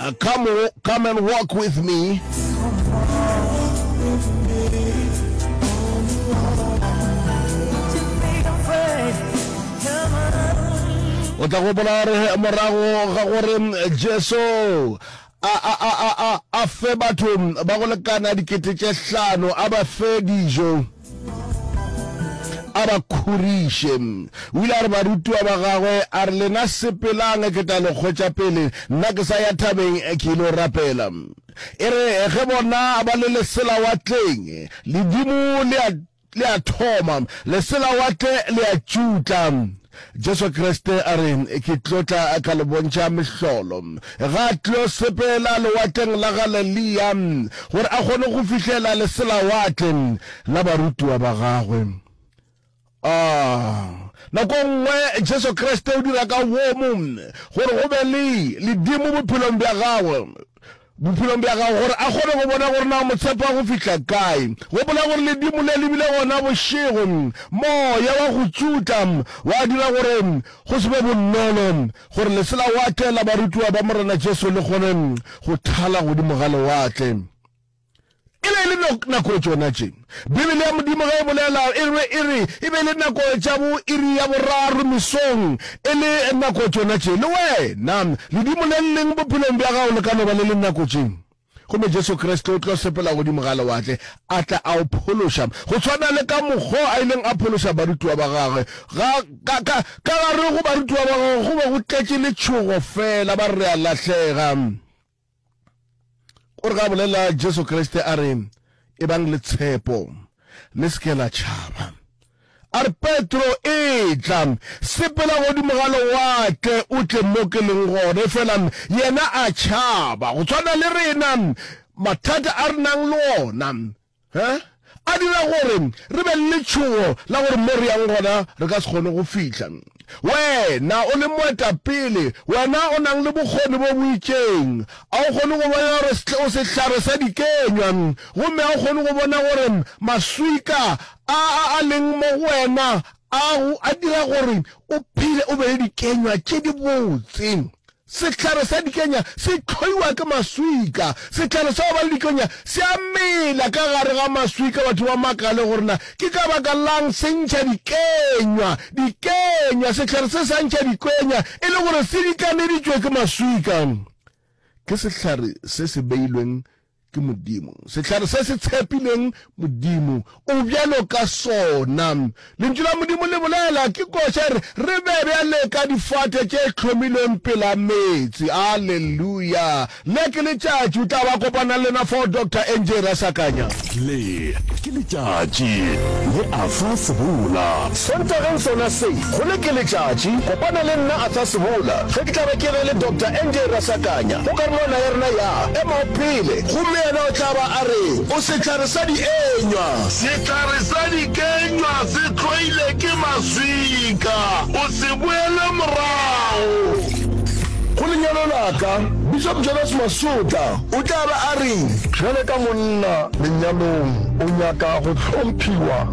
Uh, come, wo- come and walk with me. o tla gopola gore morago ga gore mm, jesu a, a, a, a, a, a fe batho mm, ba go lekana dikete tše hlano a ba fe dijo a ba khuriše. O ile a re barutiwa ba gagwe, a re, Lena sepelang, ke tla le kgwetša pele, nna ke sa ya thabeng ke ile rapela. E re ge bona ba le leselawatleng, ledimo le a, le a thoma, leselawatle le a tšutla. Jesu Kriste a re, Ke tlo tla ka le bontšha mehlolo. Ga a tlo sepela Lewatleng la Galelea gore a kgone go fihlela leselawatle la barutiwa ba gagwe. A Nako nngwe Jesu Kriste o dira ka boomo gore go be le ledimo bophelong bja gagwe. bophelong bja gago gore a kgone go bona gore na o mo tshepa go fihla kae. Gopola gore ledimo le le bile gona bošego. Moya wa go tšutla wa dira gore go se be bonolo gore lesela watee la barutiwa ba Morena Jesu le kgone go thala godimo ga lewatle. E be e le nako tšona tše Bibele ya Modimo ge e bolela e re e re e be e le nako tša bo iri ya boraro mesong, e le nako tšona tše. Le wena ledimo le leng bophelong bja gago le ka no ba le le nako tše. Gomme Jesu Kriste o tlo sepela godimo ga lewatle a tla a o phološa, go tshwana le ka mokgo a ileng a phološa barutiwa ba gagwe. Ga, ka, ka, ka gare go barutiwa ba gagwe go be go tletše letšhogo feela, ba re re a lahlega. Gore ga bolela Jesu Kriste a re, Ebang le tshepo, le se ke la tšhaba. A re, Petro, etla, sepela godimo ga lewatle o tle mo ke leng gone. Efela yena a tšhaba. Go tshwana le rena, mathata a re nang le ona He a dira gore re be le letšhogo la gore mo re yang gona re ka se kgone go fihla. Wena o le moetapele, wena o nang le bokgoni bo bo itšeng, a o kgone go bona gore o sehlare sa dikenywa gomme a o kgone go bona gore maswika a a a leng mo go wena a a dira gore o phele o be le dikenywa tše dibotse? Sehlare sa dikenya se hloiwa ke maswika. Sehlare sa go ba le dikenya se a mela ka gare ga maswika, batho ba makale gore na ke ka baka la'ng se ntšha dikenywa. Dikenywa, sehlare se sa ntšha dikwenya e le gore se dikaneditšwe ke maswika, ke sehlare se se beilweng ke Modimo. Sehlare se se tshepileng Modimo o bjalo ka sona. Lentšu la Modimo le bolela, ke koša re, re be bjale ka difate tše hlomilweng pela meetse. Aleluya! Le ke letšatši o tla ba kopana le lena fao, Doctor NJ Rasakanya. Le ke letšatši le a fa sebola Sontageng sona se, go le ke letšatši, kopana le nna Athasebola ge ke tla be ke ge le Doctor NJ Rasakanya go karolwana ya rena ya Emago Pele. Gomme yena o tla ba a re, O sehlare sa dienywa. Sehlare sa dikenywa se tloilwe ke maswika. O se boele morago. Go lenyalo la ka, Bishop Jonas Masutla o tla be a re. Bjale ka monna lenyalong, o nyaka go hlomphiwa.